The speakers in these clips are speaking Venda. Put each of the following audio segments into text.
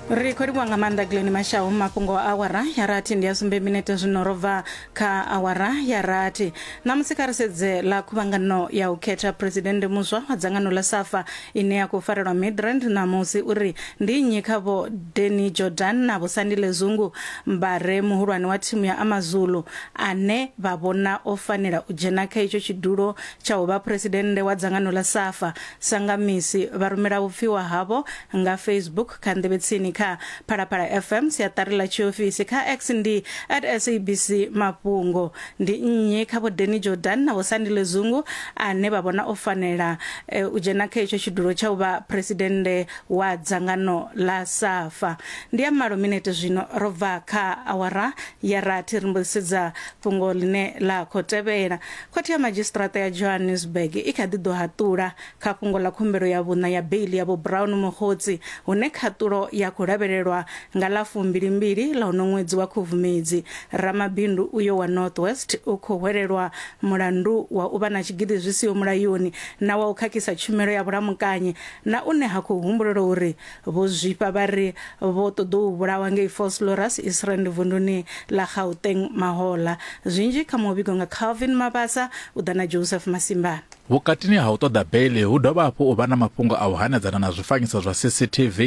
ri khou livhuwa nga maanḓa glen mashaho mafhungo a awara ya rathi ndi a sumbe minete zwino ro bva kha awara ya rathi ṋamusi kha ri sedze ḽa khuvhangano ya u khetha phuresidennde muswa wa dzangano ḽa safa ine ya khou farelwa midrand ṋamusi uri ndi nnyi kha vho deni jordan na vho sandile zungu mbare muhulwane wa thimu ya amazulu ane vha vhona o fanela u dzhena kha itsho tshidulo tsha u vha phuresidennde wa dzangano ḽa safa Sa nga misi, vha rumela vhupfiwa havho nga Facebook, kha nḓevhetsini, kha Phalaphala FM, siaṱari ḽa tshiofisi, kha X ndi at SABC Mafhungo. Ndi nnyi kha Vho Danny Jordaan na Vho Sandile Zungu ane vha vhona o fanela e, u dzhena kha itsho tshidulo tsha u vha phresidennde wa dzangano ḽa SAFA? Ndi ya malo minete zwino, ro bva kha awara ya rathi ri mbo ḓi sedza fhungo ḽine ḽa khou tevhela. Khothe ya Madzhisiṱiraṱa ya Johannesburg i kha ḓi ḓo haṱula kha fhungo ḽa khumbelo ya vhuṋa ya beiḽi ya Vho Brown Mokgotsi hune khaṱulo ya khou lavhelelwa nga ḽa fumbili-mbili ḽa uno ṅwedzi wa Khubvumedzi. Ramabindu uyo wa North West u khou hwelelwa mulandu wa u vha na tshigidi zwi siho mulayoni na wa u khakhisa tshumelo ya vhulamukanyi na une ha khou humbulelwa uri Vho zwifha vha ri vho ṱoḓou vhulawa ngei Vosloorus, Israel vunduni ḽa Gauteng mahoḽa. Zwinzhi kha muvhigo nga Calvin Mabasa, u ḓa na Joseph Masimba. Vhukatini ha u ṱoḓa beiḽi hu dovha hafhu u vha na mafhungo a u hanedzana na zwifanyiso zwa CCTV.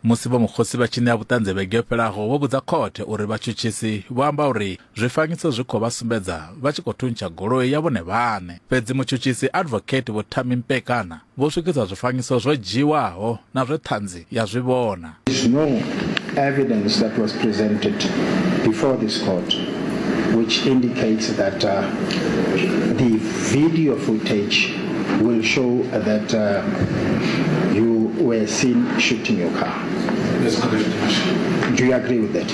Musi vho Mukhosi vha tshi ṋea vhuṱanzi vhege yo fhelaho vho vhudza khothe uri vhatshutshisi vho amba uri Zwifanyiso zwi khou vha sumbedza vha tshi khou thuntsha goloi ya vhone vhaṋe. Fhedzi mutshutshisi Advocate Vho Thami Mpekana vho swikisa zwifanyiso zwo dzhiiwaho na zwe ṱhanzi ya zwi vhona. There is no evidence that was presented before this court which indicates that the video footage will show that you were seen shooting your car. Do you agree with that?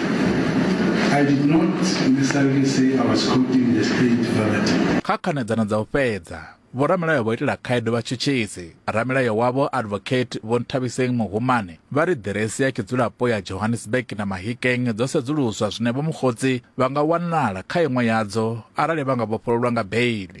I did not necessarily say I was quoting the state verbatim. kha khanedzano dza u fhedza vhoramilayo vho itela khaedu vhatshutshisi ramilayo wavho advocate vho nthabiseng muhumane vha ri ḓiresi ya tshidzulapo ya johannesburg na mahikeng dzo sedzuluswa zwine vho mukhotsi vha nga wanala kha iṅwe yadzo arali vha nga vhofhololwa nga beili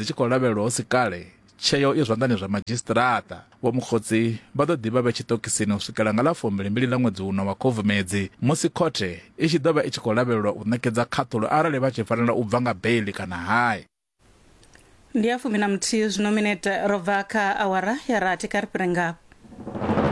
dzi tshi khou lavhelelwa hu si kale, tsheo i zwanḓani zwa madzhisiṱiraṱa. Vho Mokgotsi vha ḓo ḓi vha vhe tshiṱokisini u swikela nga ḽa fumbili-mbili ḽa ṅwedzi uno wa Khubvumedzi musi khothe i tshi ḓo vha i tshi khou lavhelelwa u ṋekedza khaṱhulo arali vha tshi fanela u bva nga beiḽi kana hai. Ndi ya fumi na muthihi zwino, minete ro bva kha awara ya rathi. Kha ri fhire ngafha.